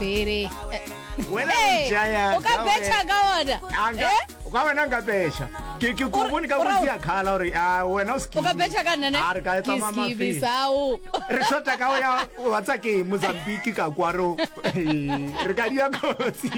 bere o ka betšha ka ona eh? ka wena nka betšha ke ke go bone ka go sia khala gore a wena o se o ka betšha ka nna a re ka etsa mama ke bisao re shota ka ya wa tsa ke Mozambique ka kwaro re ka dia kotsi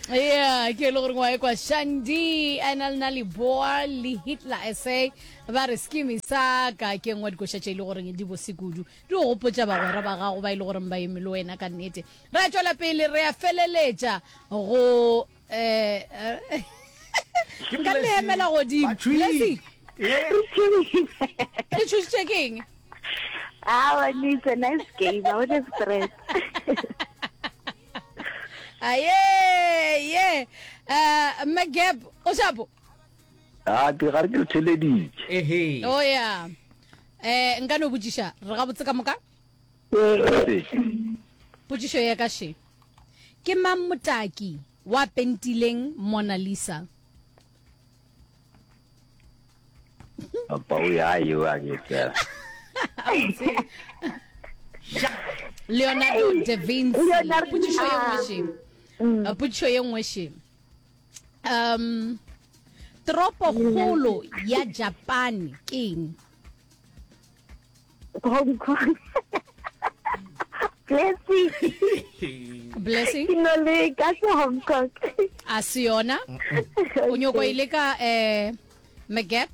yeah ke le gore ngwa e kwa shandi a na le na liboa le hitler sa ba re skimi sa ka ke ngwa dikoša tše e le goreng di bose kudu Di go gopotša bagwera ba gago ba e le goreng ba eme le wena ka nnete. Re a tšwela pele, re a feleletša go um ka leemela godimo. Blessing, le tšhošitše ke eng? Awa, ni it's a nice game. I want a stress. Aye, ye. Uh, Magab, o shapo? a ke ga re ke le theleditše ehe o ya um nka no botšiša re gabotse ka moka potšišo ya ka še ke mang motaki wa pentileng mona lisa pao ya eo a ke tsela leonardo da vinci potšišo ye nngwe še potšišo ye nngwe še um tropo kgolo ya japan ke eng hong kong blessing blessing ke no le ka se hong kong a se yona o nyoko ile ka um eh, mcgap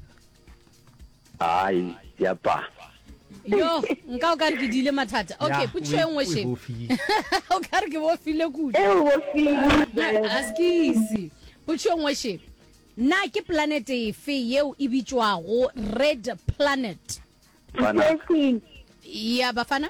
Ai, yapa. yo nka o ka re ke diile mathata okay Ya, potšišo e o- nngwe o e sheng bofile. o ka re ke bofile kudu e o bofile askisi potšišo e nngwe sheng na ke planete efe yeo e bitšwago red planet Fana. Blessing. ya bafana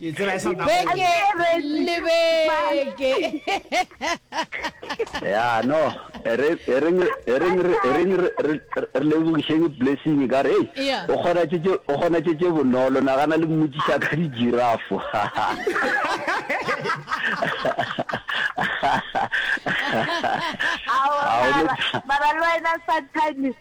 beke le beke ya no e re e reng e reng re e reng re- re re lebogišeng blessing ka re hey, Yeah. o kgona tše tše- o kgona tše tše bonolo nagana le mmotšiša ka dijirafo Ao, Ao, mara- le- mara le wena sometimes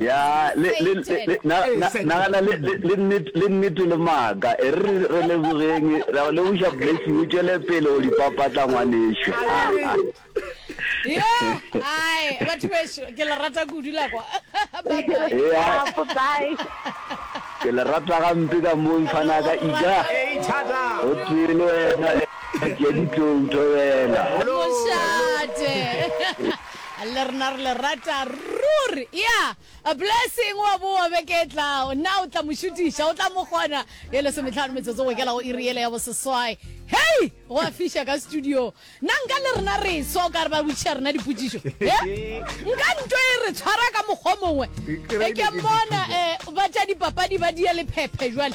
ya le le le na na na na le le le nnete- le nnete le maaka e re re- re lebogeng ra go leboša blessing o tšwele pele o di papatla ngwaneso ai batho bešo ke le rata kudu la kwa Ya, ke le rata gampe ka mo mfana ka ija o tee le wena ke ya ditlong thobela mošate Le rena re le rata ruri. Yeah. A blessing wa boa beke e tlago. Na o tla mo šutiša? O tla mo kgona? Ye lesometlhano metsotso go ikela go iri yele ya boseswai. Hei! Go a fiša ka studio. Na nka le rena re swa o ka re ba botšiša rena dipotšišo? He? Nka nto e re tshwara ka mokgwa o mongwe. E ke mmona eh, ba tša dipapadi ba dia lephephe jwale.